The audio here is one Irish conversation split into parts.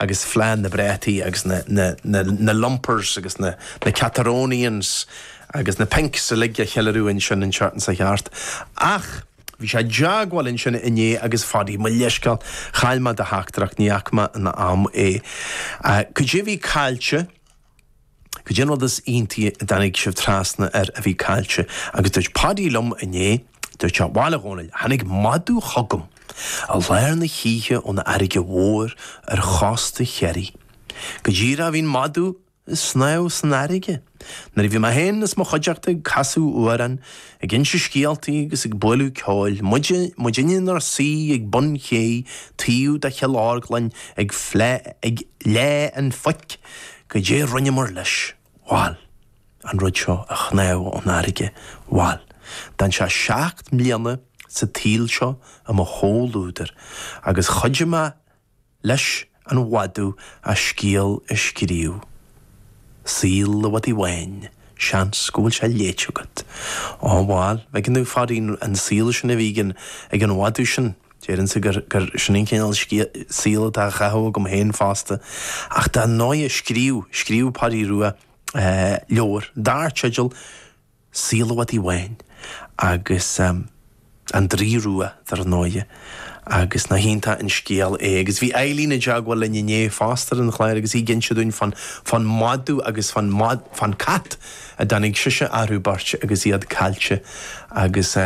agus fleadh na bprátaí agus na lumpers agus na cataronians agus na pinks uilig a cheiliúradh ansin i nGort an Choirce. Ach bhí sé i dteagmháil ansin inné agus a Phaddy, mo leithsceal, chaill mé do theachtaireacht, ní fhaca mé in am é. Cad é bhí caillte? Goidé an rud is íontaí a dtáinig sibh trasna air a bhí caillte agus dúirt Páidí liom inné, dúirt sé, bhail a Dhónaill, tháinig madadh chugam i lár na hoíche ón fharraige mhór ar chósta Chiarraí. Goidé, bhí an madadh ag snámh san fharraige. Nuair a bhí mé féin is mo chuideachta ag casadh amhrán, ag inse scéaltaí agus ag bualadh ceoil, muid, muid inár suí ag bun cé taobh de Chill Orglain ag, ag Fleá an Phoic, Goidé rinneamar leis? Bhail, an rud seo a shnámh ón fharraige, bhail, d'fhan sé seacht mbliana sa tsaol seo i mo chomhluadar agus chuidigh mé leis an mhadadh a scéal a scríobh. Saol an Mhadaidh Bháin, seans go bhfuil sé léite agat. Á, bhail, bheadh an, bheadh an saol sin a bhí ag an mhadadh sin, Deirimse gur sin an cineál saol atá á chaitheamh agam féin fosta, ach dar ndóigh scríobh, scríobh Páidí Rua leabhar dar teideal Saol an Mhadaidh Bháin agus An Draoi Rua dar ndóigh agus nach iontach an scéal é. Agus bhí Eileen i dteagmháil linn inné fosta ar an chlár agus í ag inse dúinn fán, fán mhadadh agus fán, fán cat a dtáinig sise, orthu beirt agus iad caillte agus.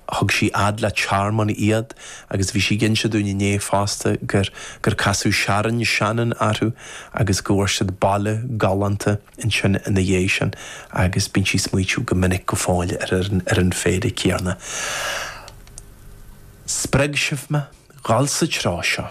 Thug sí fhad le tearmann iad agus bhí sí ag inse dúinn inné fosta gur gur casadh Sharon Shannon orthu agus go bhfuair siad baile galánta ansin ina dhiaidh sin agus bíonn sí ag smaoitiú go minic go fóill ar an ar an phéire céanna. Spreag sibh mé dhul sa treo seo.